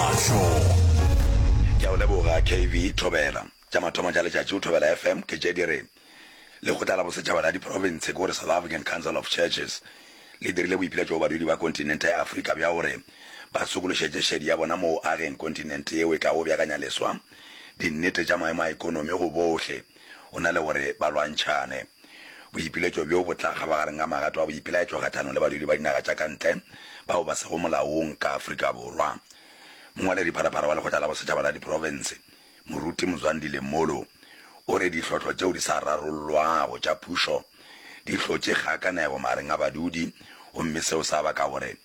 Ke a o leboga KB Thobela. Tša mathomo tša letšatši go Thobela FM ke tše di re, Lekgotla la Bosetšhaba la Diprofense, ke go re South African Council of Churches, le dirile boipiletšo go badudi ba kontinente ya Afrika bja gore ba sokološetše šedi ya bona mo go ageng kontinente yeo e tlago beakanya leswa dinnete tša maemo a ekonomi go bohle. go na le gore ba lwantšhane. Boipiletšo bjo bo tla kgabagareng ga magato a boipelaetšo kgahlanong le badudi ba dinaga tša ka ntle bao ba sego molaong ka Afrika Borwa. Mongwaledipharapara wa Lekgotla la Bosetšhaba la Diprofense, Moruti Mzwandile Molo, o re ditlhohlo tšeo di sa rarollwago tša phušo di hlotše kgakanego magareng a badudi gomme seo sa baka gore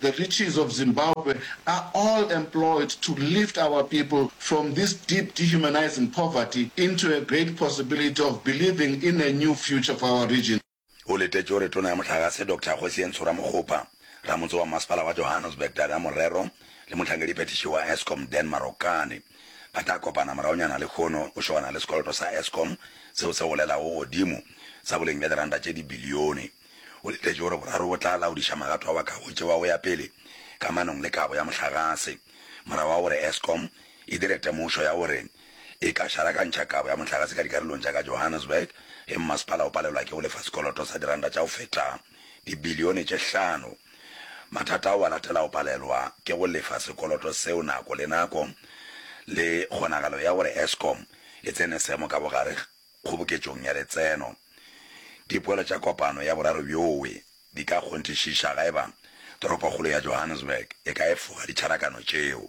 The riches of Zimbabwe are all employed to lift our people from this deep dehumanizing poverty into a great possibility of believing in a new future for our region. O letetše gore Tona ya Mohlagase Doctor Kgosientsho Ramokgopa, Ramotse wa Mmasepala wa Johannesburg Dadah Morero le mohlangediphethiši wa Eskom Dan Marokane ba tla kopana moraonyana lehono go šogana le sekoloto sa Eskom seo se golelago godimo sa boleng bja diranta tše dibilione O letetše gore boraro bo tla laodiša magato a bakago tšeo a go ya pele ka manong le kabo ya mohlagase, morago ga gore Eskom e dire temošo ya gore e ka šarakantšha kabo ya mohlagase ka dikarolong tša ka Johannesburg ge mmasepala o palelwa ke go lefa sekoloto sa diranta tša go feta dibilione tše hlano. Mathata ao a latela go palelwa ke go lefa sekoloto seo nako le nako le kgonagalo ya gore Eskom e tsene seemo ka bogare kgoboketšong ya letseno. Dipoelo tša kopano ya boraro bjoe di ka kgonthišiša ga eba toropokgolo ya Johannesburg e ka efoga ditšharakano tšeo.